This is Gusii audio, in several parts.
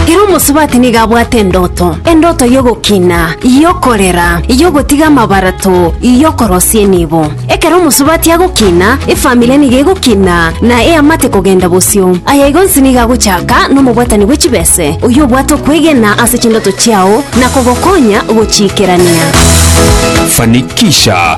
Kera omosubati nigo abwate endoto, endoto y'ogokina, y'okorera, y'ogotiga amabarato, y'okorosia enibo. Ekero omosubati agokina, efamiri nigo egokina na eamate kogenda bosio. Aya igo onsi nigo agochaka nomobwatani bwe chibese, oyio obwate okwegena ase chindoto chiao na kogokonya gochiikerania. Fanikisha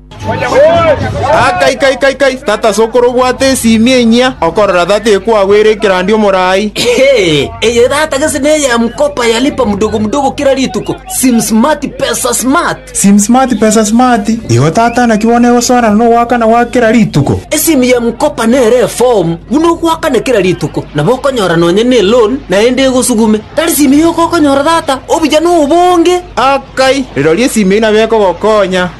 Kai, kai, kai, kai! Tata sokoro obwate esiimi enyia, okorora tata ekwagwere ekerandi omorai. Eye tata gese neya mkopa ya lipa mdogo mdogo kera rituko, sim smart pesa smart. Sim smart pesa smart, igo tata naki bono egosoerana nogoakana gwa kera rituko. Esiimi ya mkopa nere efomu buna ogoakana kera rituko, nabo okonyora nonya ne loan naende egosugume. Tari siimi yoka okonyora tata, obuya nobonge. Kai, rirorio esiimi eyio nabo ekogokonya.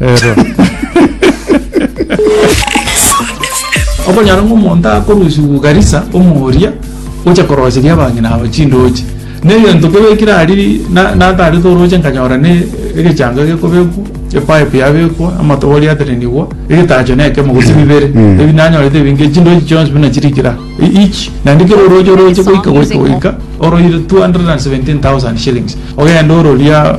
Ero. Okonyora ng'a omonto akorusiwu Garissa omoria gocha koroseria abang'ina aba chindoche. Ne egento kebekire aria na natarete oroche nkanyora ne egechango gekobekwa, epipe yabekwa, amatobori aterenigwa, egetacho na ekemo gose bibere. Mm. Ebi nanyorete ebinge chindoche chionsi buna chirikire aa. E- Each. Naende kera oroche oroche goika goika goika oroire 217,000 shillings. Ogenda ororia